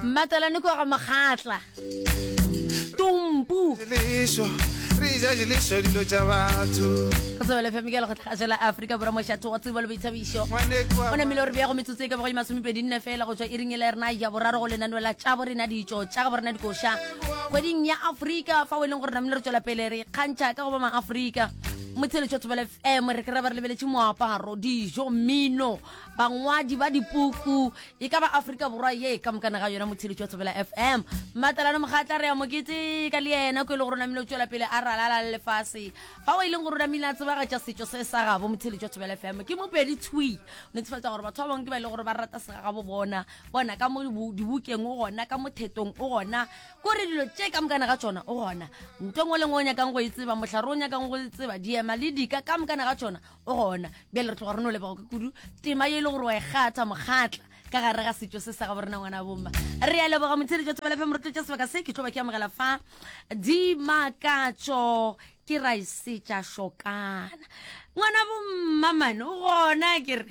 mmatalane kwa ga mokgatla tumpu sebelefemke le go tlhagasho la aforika borwa mošatho wa tsebo le boithabišo o namile gore bjago metsotso e ka bago e masomepedi nne fela go tswa e ringele rena ya boraro go lenaneo la tša bo rena ditšo tša ga bo rena dikoša kgweding ya aforika fa o e leng gore namile re tswela pele re kgantšha ka go ba maaforika motsheletšo thobela fm re kry-a ba re lebeletše moaparo dijo mmino bangwadi ba dipuku E ka ba Afrika Borwa ye ka mokana ga yona motheletši wa Thobela FM. Matalana Mogatla re a mo keteka le yena ko e le gore o namile o tšwela pele a ralala le lefase. Fa o e leng gore o namile a tsebagatša setšo se sa gabo motheletši wa Thobela FM ke Mopedi Tshwi. O netefatsa gore batho ba bangwe ke ba e le gore ba rata segagabo bona bona ka mo dibukeng o gona ka mothetong o gona kore dilo tše ka mokana ga tšona o gona ntho ngwe le ngwe o nyakang go e tseba mohlare o nyakang go e tseba diema le dika ka mokana ga tšona o gona bjale re tloga re no leboga ke kudu tema ye e le gore wa e kgatha mokgatla ka gare ga setšo se sa ga borena ngwana bomma re a leboga motshedi jwa tsebelefe moretlo tša sebaka se ke tlo ba ke amogela fa dimakatso ke ra isetša šokana ngwana bomma mane o gona kere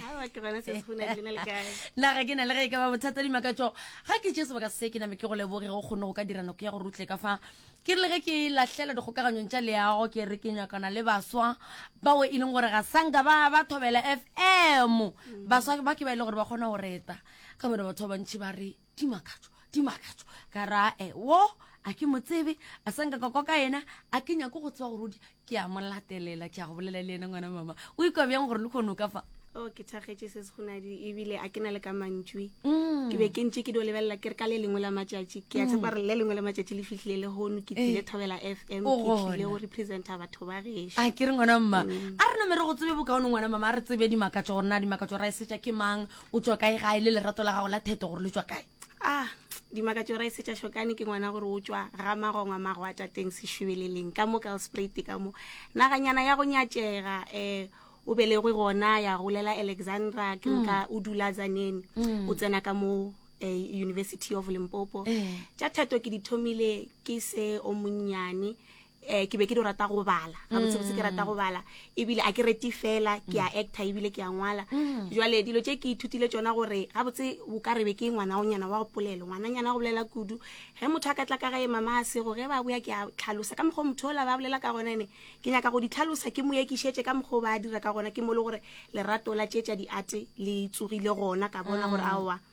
naga ke na le ge e ka ba bothata dimakatso ga ke tše sebaka se ke name ke go leboge go kgone go ka dira nako ya go rutle ka fa Ke re le ge ke lahlela dikgokaganyong tša leago ke re ke nyakana le baswa bao e leng gore ga sanka ba ba thobela fm baswa ba ke ba e le gore ba kgona go reta ka bone batho ba bantšhi ba re di makatšo di makatšo ka ra e wo a ke mo tsebe a sanka ka kwa ka yena a ke nyako go tseba gore o di ke a mo latelela ke a go bolela le ena ngwana mama o ikwa bjang gore le kgono ka fa o oh, ke thagetse se segonadi ebile a ke na le ka mantšwi mm. ke be ke ntse ke dio lebelela ke re ka le lengwe la matšatši ke a mm. tshepa re le lengwe la matšatši le fitlhile le gono ke tlile eh. thobela f m ke tlile go representa batho ba gešo a ke re ngwana mma mm. a re namere go tsebe bokaone ngwana mama a re tsebe dimakatso gore na dimakatso ra e setša ke mang o tswa kae gae le lerato la gago la theto gore le tswa kae a ah, dimakatso ra e setša šokane ke ngwana gore o tswa ga magongwa mago a tateng sešubeleleng ka mo kalsprate ka mo naganyana ya go nyatšega um o belegwe gona ya golela alexandra ke mm. ka o dula zanene mm. o tsena ka mo eh, university of limpopo eh. tša thato ke di thomile ke se o monnyane um ke be ke di rata go bala ga botsebotse ke rata go bala ebile a ke reti fela ke a actor ebile ke a ngwala mm. jale dilo tse ke ithutile tsona gore ga botse o ka rebe ke ngwana o nyana wa go polelo ngwananyana go bolela kudu ge motho a ka tla ka gae mama a sego ge ba boya ke a tlhalosa ka mokgwa motho ola ba bolela ka gona ene ke nyaka go di tlhalosa ke mo ekišetse ka mokgwa o ba dira ka gona ke mo le gore lerato la tse tsa diate le tsogile gona ka bona gore mm. aowa mm.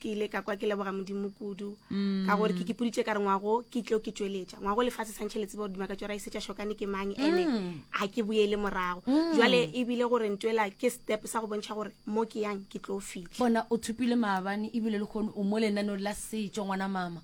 ke ile ka kwa ke leboga modimo kudu mm. ka gore ke kipoditše ka re ngwago ke tlo ke tšweletša ngwago lefatshe santšhe le tseba gore dimaka tšora e setša shokane ke mang ene ga mm. ke boele morago mm. jale ebile gore ntwela ke step sa go bontšha gore mo ke yang ke tlo fitlha bona o thopile maabane ebile le kgone o mo lenanong la setšo ngwana mama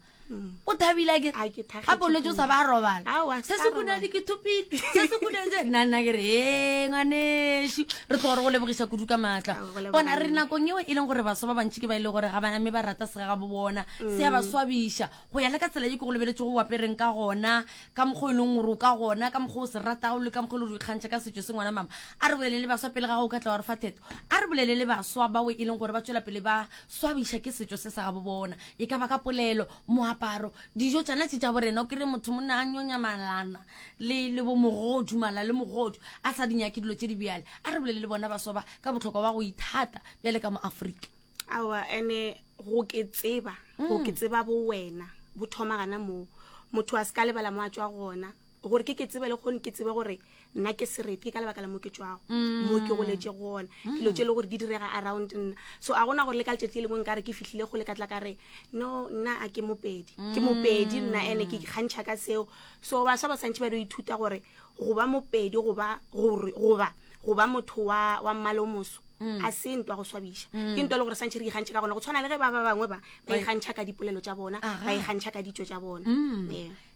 o thabile ke ga bolwetse o sa ba robala se se kunadi ke thopile se se kunadi nna nna ke re e ngwaneso re tlo gore go lebogisa kudu ka maatla bona re nakong eo e leng gore baswa ba bantši ke ba e le gore ga bana mme ba rata sega ga bo bona se ya ba mm. swabiša go ya le ka tsela e ke go lebeletse go apereng ka gona ka mokgwa e leng gore o ka gona ka mokgwa o se ratago le ka mokgwa e le gore o ikgantšha ka setso se ngwana mama a re bolele le baswa pele ga go ka tla wa re fa theto a re bolele le baswa bao e leng gore ba tswela pele ba swabiša ke setso se sa ga bo bona e ka ba ka polelo moaparo dijo tsona tse tša borena o kry motho monna a nyonya malana le le bo mogodu mala le mogodu a sa di nyake dilo tse di bjale a re bolele le bona baswa ba ka botlhokwa ba go ithata bjale ka mo aforika awa ene go ke tseba go ke tseba bo wena bo thoma gana moo motho a se ka lebala mo a tswa gona gore ke ke tsebe le kgone ke tsebe gore nna ke serete ke ka lebaka la mo ke tswago mm. mo ke goletse gona mm. dilo tse e le gore di direga around nna so a gona gore le ka letsatsi le lengwe nkare ke fitlhile go le ka tla ka re no nna a ke mopedi ke mm. mopedi nna ene ke kgantšha ka seo so basha ba santšhe ba dio ithuta gore go ba mopedi goba go ba motho wa mmalo moso Mm. a se ntwa go swabiša mm. ke ntwa e le gore santšhe re ikgantšha ka gona go tshwana le ge ba ba bangwe ba ba ikgantšha ka dipolelo tša bona ba ikgantšha ka ditso tša bona mm.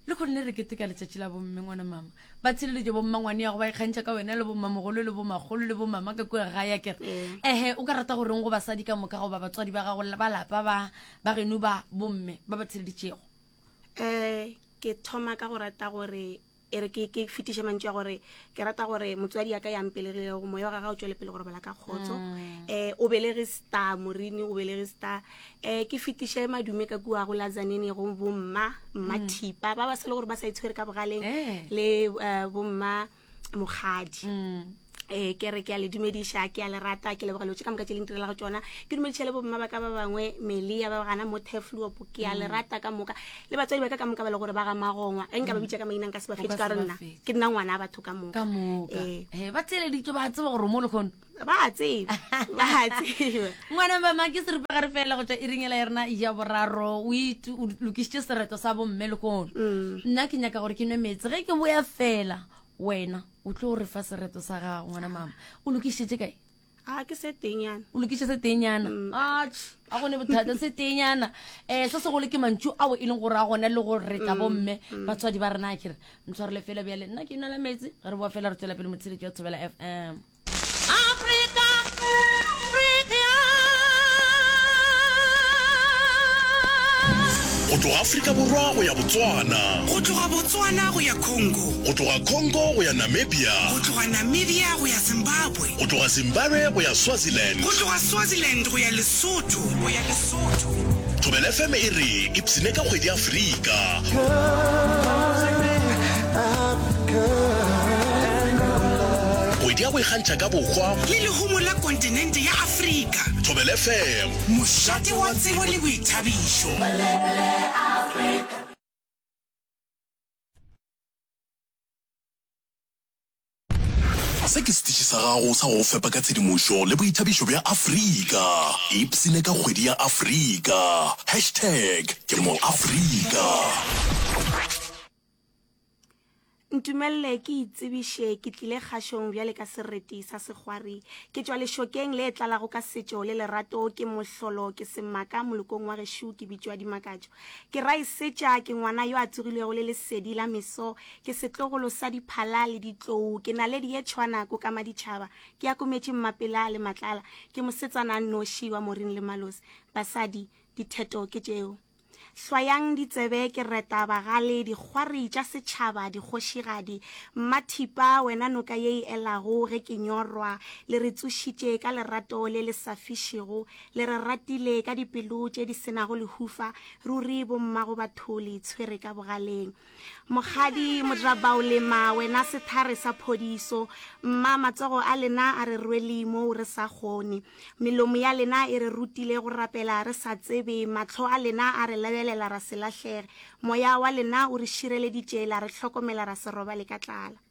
le kgone le re keteka letšatši la bomme ngwana mama ba tsheleletše bommangwane yago ba ikgantšha ka wena le bommamogolo le bomakgolo le bomama ka kua ga ya kere mm. ehe o ka rata go reng go basadi ka moka goba batswadi ba gago ba lapa ba ba geno ba bomme ba ba tsheleditšego um ke thoma ka go rata gore e re ke fetiše mantšu ya gore ke rata gore motswadi yaka ya mpelegilego moya wa gaga o tswele pele go robala ka kgotso um mm. eh, o belege star morini o belege star um ke fetiše madume ka kua go lazanene go bomma mma mm. thipa ba ba sele gore ba sa itshwere ka bogaleng eh. le eh, bomma mokgadi mm. eh ke re ke a le dumediša ke a le rata ke leboga lotse ka moka tse leng tirela go tsona ke dumediša le bomma ba ka ba bangwe melia ba gana mo tefluopo ke a le mm. rata ka moka le batswadi ba ka ka moka ba le gore ba ga magongwa e nka ba bitsa ka maina nka se ba fetse ka re nna ke nna ngwana a batho ka moka eh. Eh, ba tseleditswe ba tseba gore mo le kgono ba tseba ba tseba ngwana mama ke seripagare fela go tswa e ringela ya rena ya boraro o lokisitse sereto sa bomme le kgono mm. nna ke nyaka gore ke nwe metse ge ke boya fela wena o tlo gore fa sereto sa gago ngwana mama o lokisitse kae a ke se tenyana o lokiše se tenyana mm. a gone bothata se tenyana um eh, se segolo ke mantšu ao e leng gore a gone le go reta mm, bomme mm. batswadi ba rena kere ntshwarele fela bjale nna ke inela metsi re boa fela re tswela pele motsheletso wa tshobela f m go tloga aforika borwa go ya botswana go tloga botswana go ya congo go tloga congo go ya namibia go tloga namibia go ya zimbabwe Go tloga Zimbabwe go ya Swaziland. Go tloga Swaziland go ya Lesotho, go ya Lesotho. Thobela FM e re ipsine ka kgwedi Afrika. Kgwedi ya go ikgantšha ka bohwa. Le lehumo la kontinente ya Afrika. Thobela FM. Mošate wa tsebo le boithabišo. Bulebulle Afrika. Se ke setiši sa gago sa go go fepa ka tshedimošo le boithabišo bja Afrika. Ipsine ka kgwedi ya Afrika. Hashtag ke moAfrika. Ntumelele ke itsebiše, ke tlile kgašong bjale ka sereti sa segwari. Ke tšwa lešokeng le tlalago ka setšo le lerato. Ke mohlolo, ke semaka molokong wa gešo, ke bitšwa Dimakatšo. Ke raisetša, ke ngwana yo a tsogilwego le lesedi la meso. Ke setlogolo sa diphala le ditlou. Ke naledi ye tšhwana ko ka maditšhaba. Ke akometše mmapela le matlala. Ke mosetsana a nnoši wa moring le malosi. Basadi, ditheto ke tšeo. Hlwayang ditsebe, ke reta bagale, dikgwari tša setšhaba, dikgošigadi. Mmathipa, wena noka ye e elago ge ke nyorwa, le re tsošitše ka lerato le le sa fišego. Le re ratile ka dipelo tše di se nago lehufa. Ruri bommagobatho le itshwere ka bogaleng. Mokgadi Modirabaolema, wena sethare sa phodiso, mma, matsogo a lena a re rwele moo re sa kgone. Melomo ya lena e re rutile go rapela re sa tsebe, mahlo a lena a re lebelela ra se lahlege, moya wa lena o re šireleditše la re hlokomela ra se robale ka tlala.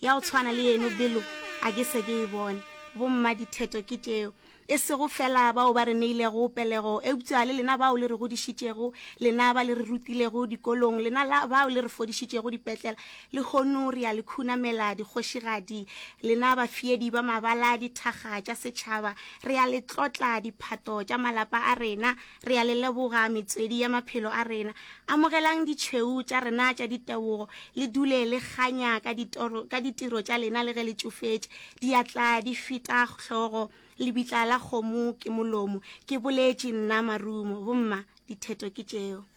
Ya go tshwana le yeno belo a ke se ke e bone. Bommadithethwa ke tšeo, e sego feela bao ba re neilego pelego, eupša le lena bao le re godišitšego, lena ba le re rutilego dikolong, lena la bao le re fodišitšego dipetlela. Lehono re a le khunamela, dikgošigadi, lena bafeedi ba mabala, dithakga tša setšhaba. Re a le tlotla, diphato tša malapa a rena. Re a le leboga, metswedi ya maphelo a rena. Amogelang ditšhweu tša rena tša ditebogo, le dule le kganya ka ditoro, ka ditiro tša lena le ge le tšofetše. Diatla di feta hlogo, lebitla la kgomo ke molomo. Ke boletše nna, marumo, bomma, ditheto ke tšeo.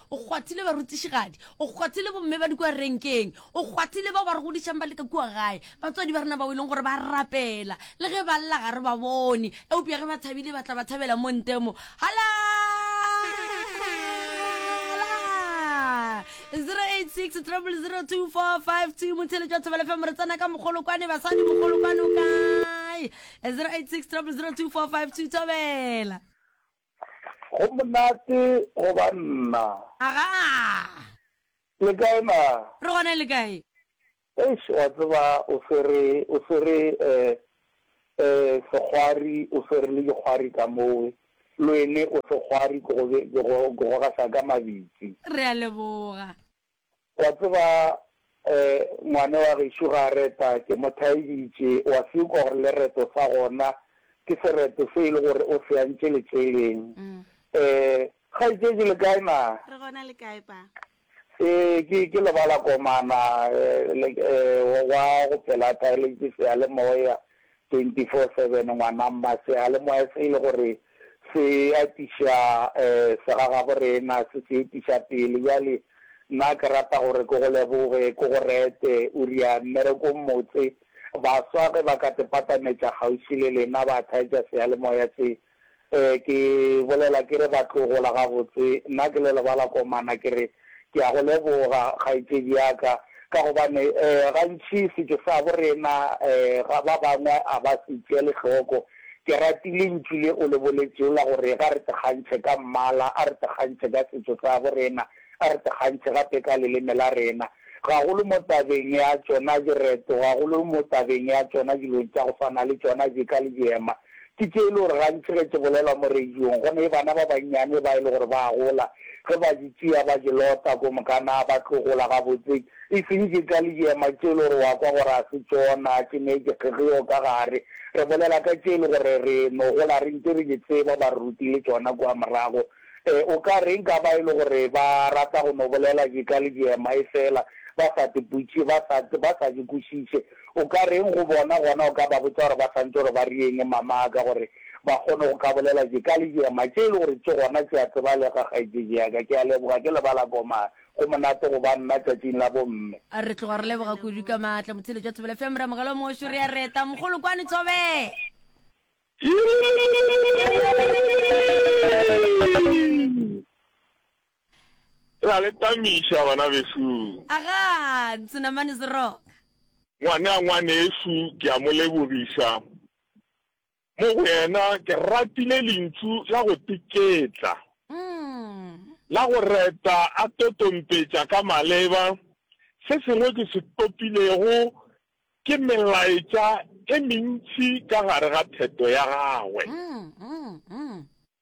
o kgwathile barutišigadi o kgwathile bomme ba di kua renkeng o kgwathile bao ba re godišang ba leka kua gae batswadi ba rena bao e leng gore ba rapela le ge ba lla ga re ba bone eupša ge ba thabile ba tla ba thabela mo ntemo hala 086 00245 motheletšo wa thobela fm re tsena ka mogolokwane basadi mogolokwane o kae 086 00245 thobela Go monate go ba nna. Agaa! Le kae na? Re gona le kae? Eish, wa tseba o swere, o swere eh, eh, sekgwari, o swere le dikgwari ka mowe. Loene o sekgwari, ke go be, ke go, ke go gasa ka mabitsi. Re a leboga. O a tseba, ngwane wa gešo, ga a reta, ke mo thaeditše, o a se ukwa gore lereto sa gona ke sereto se e le gore o se antše letšeleng. Kgaetšedi, le kae na? Re gona, le kae pa? Ee, ke, ke lebala komana, le, wa go pela thaeletše seyalemoya. 24-7 ngwana mma seyalemoya se e le gore se atiša segagabo rena se se etiša pele bjale nna ke rata gore ke go leboge ke go rete o ria mmereko mmotse baswa ge ba ka tepatametša kgauswi le lena ba thaetša seyalemoya se Ee, ke bolela ke re ba tlogola gabotse. Nna ke le lebala komana ke re, Ke a go leboga, kgaetšedi ya ka, ka gobane gantši setšo sa bo rena ga ba bangwe a ba se tšeele hloko. Ke rati lentšu le o le boletšego la gore ga re tekgantšhe ka mmala, a re tekgantšhe ka setšo sa bo rena. a re tekgantšhe gape ka leleme la rena, gagolo mo tabeng ya tšona direto, gagolo mo tabeng ya tšona dilong tša go swana le tšona jeka le jeema. Ke tše e le gore gantši ge tše bolelwa mo radiong, go ne bana ba bannyane ba e le gore ba a gola, ge ba di tšea ba di lota ko moka, naa ba tlo gola gabotse e seng jeka le jeema tše e le gore wa kwa gore ga se tšona, tše ne di kgegeo ka gare. Re bolela ka tše e le gore re no gola re ntše re di tseba, ba re rutile tšona kua morago. E, o ka reng ka ba e le gore ba rata go no bolela je ka lejema e fela, ba sa tiputše, ba sa, ba sa je kwešiše? O ka reng go bona? Gona o ka ba botša gore ba santše gore ba rieng, Mamaka, gore ba kgone go ka bolela je ka lejema, tše e le gore tše gona tše a tsebalega, kgaetšeji ya ka. Ke a leboga, ke lebala komang. Go monate go ba nna tšatšing la bomme. A re tloga re leboga kudu ka maatla, Motheletšwa Thobela Fm, Ramogelo Mošo, re a reta, Mogolokwane Tsobe! Ra le tamiša bana besung. Aga, senamane se roka. Ngwana, ngwanešu, ke a mo lebogiša. Mo go yena ke ratile lentšu la go teketla, la go reta a totompetša ka maleba se sengwe ke se topilego Ke melaetša e mentši ka gare ga theto ya gagwe.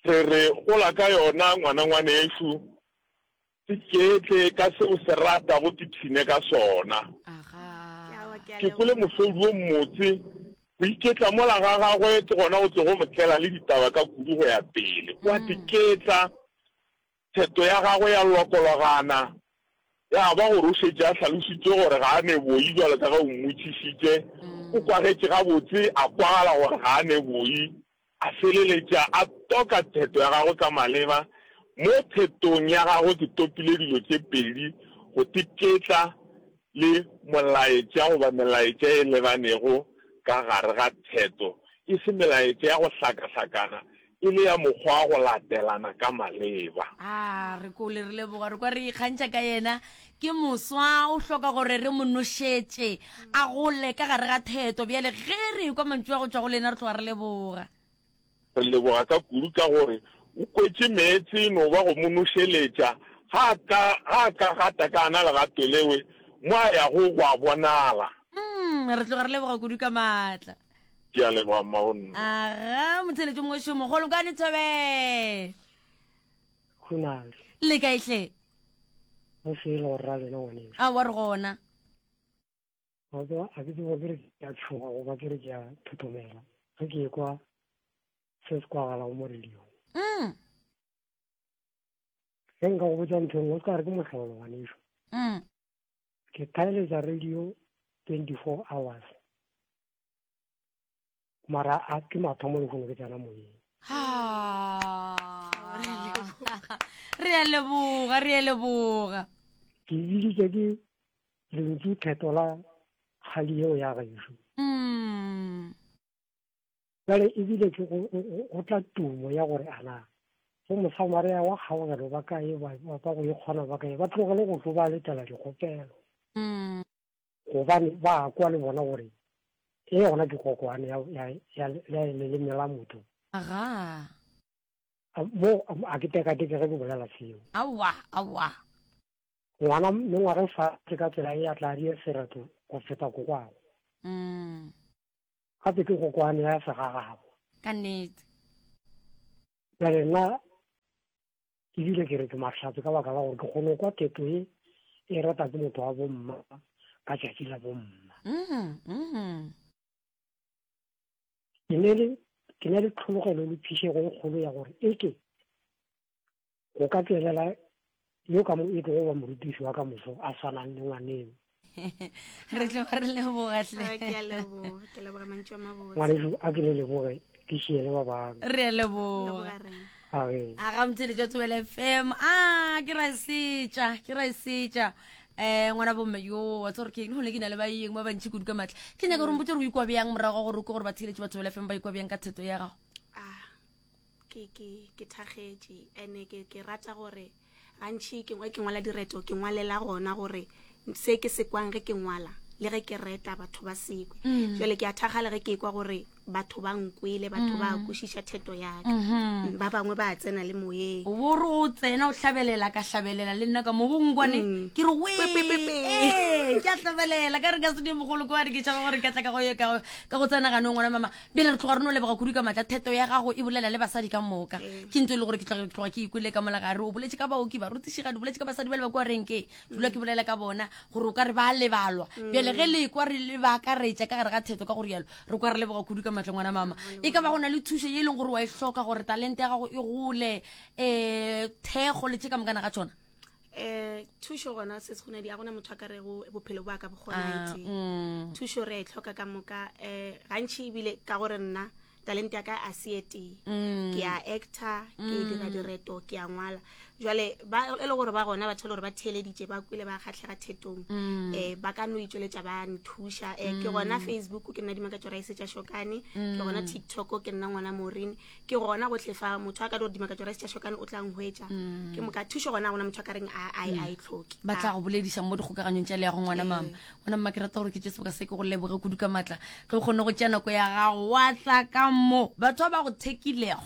Re re gola ka yona, ngwana ngwanešu. Iketle ka se o se rata go tiphine ka sona. Ke kwele mohlodi wo mmotse, Go iketla mola ga gagwe ke gona go tlogo mo tlela le ditaba ka kudu go ya pele. O a diketla Theto ya gagwe ya lokologana, ya ba gore o šetše a hlalošitše gore ga a ne boi bjalo ka ge o mmotšišitše. O kwagetše gabotse, a kwagala gore ga a ne boi, a feleletša a toka theto ya gagwe ka maleba. Mo thetong ya gagwe ke topile dilo tše pedi, go tiketla le molaetša goba melaetša e lebanego ka gare ga theto, e se melaetša ya go hlakahlakana E le ya mokgwa wa go latelana ka maleba. A re kole re leboga, re kwa re ikgantšha ka yena. Ke moswa, o hloka gore re mo nošetše a gole ka gare ga theto. Bjale ge re ekwa mantšu a go tšwa go lena, re tloga re leboga. Re leboga ka kudu ka gore o kwetše meetse e no ba go mo nošeletša. Ga a ka, ga a ka gata ka ana legato lewe, mo a yago go a bonala. Umm, re tloga re leboga kudu ka maatla. ke a leboga mmagonne aga motheletso mongwe šo mogolo ka nethobe khunale le ka ihle mo sele go rra lena ngwane a wa re gona a ke a ke tsebo ke re ke a tshoga go ba ke re ke a thothomela ge ke ekwa se se kwagala go mo radio mm ge nka go botsa ntho e nngwe o se ka re ke mohlolo ngwane šo mm ke thaeletša radio 24 hours mara a ke mathomo le kgone ke tsena moyeng re a leboga re a leboga ke biditse ke lentsu theto la kgadi eo ya gaešo mm. Bjale e bile ke go, go tla tumo ya gore a na go mosamarea wa kgaogelo ba kae ba ba go e kgona ba kae ba tlogele go tlo ba letela dikgopelo mm. gobane ba kwa le bona gore e gona ke kokoane ya leleme la motho mo a ke tekateke ge ke bolela seo awa awa ngwana mme ngwana fa ka tsela e ya tla di sereto go feta kokwago mm. Gape ke kokoano ya segagabo. Ka nnete. Bjale nna ke bile ke re ke mahlatse ka baka la gore ke kgone kwa keto ye e rata ke motho wa bomma ka tšatši la bomma. Mm-hmm, mm-hmm. Ke ne le tlhologelo le phišego e kgolo ya gore eke go ka tswelela yo ka mo e tlogo ba morutiši wa ka moso a swanang le ngwaneno re tlo re lebogatle ngwaneso a ke le leboge ke šiele ba bang re a leboga a ga motshele jwa tsebela fm a ke ra e setša ke ra e setša um ngwana bomme yo wa tse gore ke eng gone ke na le baeng ba bantšhi kudu ka maatla ke nyaka gore mpotse gore o ikwa bjang morago ga gore o ke gore ba theletše batho bela fm ba ikwa bjang ka theto ya gago Ke, ke, ke thakgetše. Ene ke, ke rata gore, gantši ke, ge ke ngwala direto, ke ngwalela gona gore se ke se kwang ge ke ngwala, le ge ke reta batho ba sekwe. Mm. Jale ke a thakgala ge ke kwa gore batho ba nkwele, batho ba mm. kwešiša theto ya ka. Mm-hmm. Mm, ba bangwe ba tsena le moyeng. Wo re o tsena o hlabelela ka hlabelela le nna ka mo bong kwane mm. ke re we ee ke a hlabelela ka re ka se di mogolo kwa re ke tšhaba gore ka tla ka go ka go tsena gano ngwana mama pele re tloga re no leboga kudu ka matla theto ya gago e bolela le basadi ka moka ee. ke ntse e le gore ke tloga ke tloga ke ikwele ka mola gare o boletse ka baoki barutišigadi o boletse ka basadi ba le ba kwa renke dula ke bolela ka bona gore o ka re ba lebalwa mm. bjale ge le kwa re le ba akaretša ka gare ga theto ka gore yalo re kwa re leboga kudu ka matleng ngwana mama mm. e ka ba go na le thušo ye e leng gore wa e hloka gore talente ya gago e gole um thekgo le tše ka mokana ga tsona eh thušo gona se se gonadi a gona motho a ka rego bophelo ba ka bokgonaete ah, mm. thušo re e tlhoka ka moka eh gantši ebile ka gore nna talente ya ka a se etee mm. ke a actor ke mm. dira direto ke a ngwala jale e le gore ba gona batho e le gore ba theeleditše ba kwile ba kgatlhega thetong um ba ka no itsweletša ba nthuša um ke gona facebook ke nna dimaka tsora e setša shokane ke gona tiktok ke nna ngwana morine ke gona gotlhe fa motho a ka dore dimaka jora setša shokane o tla ngwetša mm. ke moka thušo gona gona motho a ka reng a e mm. tlhoke ba tla go bolediša mo dikgokaganyong tša le ya go ngwana ee. mama ngwana mma ke rata gore ke tše seboka se ke go leboge kudu ka maatla ge o kgone go tšea nako ya gago wa tla ka mo batho ba ba go thekilego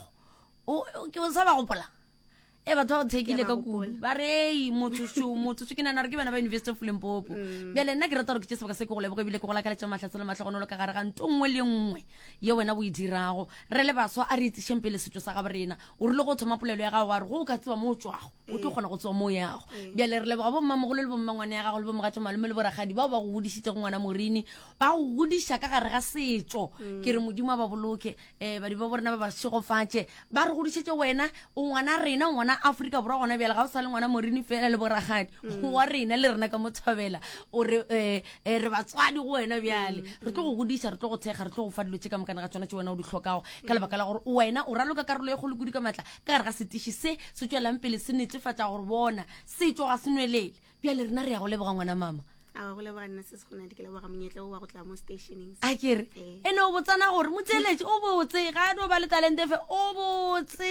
ke o sa ba gopola e batho ba go tshekile ka kudu ba rei motsoso motsoso ke nana gore ke bana ba university of limpopo mm. bjale nna ke rata gore ke tse sebaka se ke go lebogo ebile ke go lakaletsa matlhatse le matlhogonolo ka gare ga nto nngwe le nngwe ye wena o e dirago re le baswa a re itsešeng pele setso sa gabo rena o rile go thoma polelo ya gago wa re go o ka tsewa mo o tswago o tlo mm. kgona go tsewa mo o yago mm. bjale re leboga bommamogolo le bommangwane ya gago le bomogatso malome le boragadi bao ba go godišitse go ngwana morini ba go godiša ka gare ga setso ke re modimo a ba boloke um badimo bo rena ba ba segofatše ba re godišetse wena o ngwana rena o ngwana aforika borwa gona bjale ga o sa le ngwana morini fela le boragadi mm. wa rena le rena ka mo thabela o re um re batswadi go wena bjale mm. re tlo go godisa re tlo go thekga re tlo go fa dilo tse ka mokane ga tsona tse wena o di tlhokago ka lebaka la gore wena o raloka karolo e kgolo kudu ka maatla ka gare ga setiši se se tswelang pele se netefatsa gore bona setso ga se nwelele bjale rena re ya go leboga ngwana mama a go leboga nna se se go nadi ke leboga monyetla o wa go tla mo stationeng a kere Ee. ene o botsana gore motseeletše o botse ga a no ba le talente fe o botse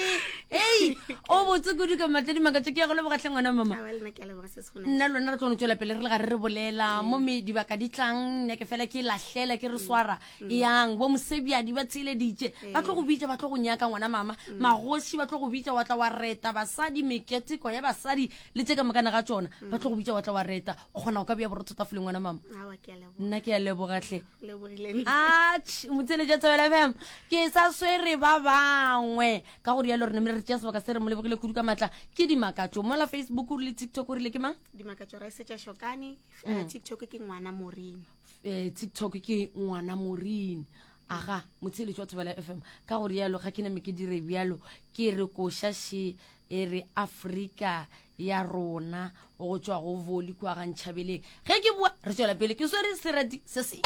ei o botse kudu ka matledi makatso ke ya go lebogatlhe ngwana mama a wa lena ke a leboga se se go nadi nna lona re tlo no tswela pele re le ga re re bolela mo me dibaka di tlang nyake fela ke lahlela ke re swara yang bo mosebjadi ba tsheleditše ba tlo go bitša ba tlo go nyaka ngwana mama magoši ba tlo go bitša wa tla wa reta basadi meketeko ya basadi le tse ka mokana ga tsona mm. ba tlo go bitsa wa tla wa reta o kgona go ka bja borotho tafoleng ngwana mama nna ke ya lebogatlhe ach motsene ja tsebela fm ke sa swere ba bangwe ka go rialo rene mele re tšea sebaka se re mo lebogile kudu ka maatla ke dimakatso mola facebook o rile tiktok o rile ke mang dimakatso ra setša shokane mm. eh, tiktok ke ngwana morin eh, tiktok ke ngwana morin aga motsheletši wa thobela fm ka go rialo ga ke name ke dire bjalo ke re košaše e re afrika ya rona go tšwa go voli kwa ga ntšhabeleng ge ke bua re tswela pele ke swere serati se se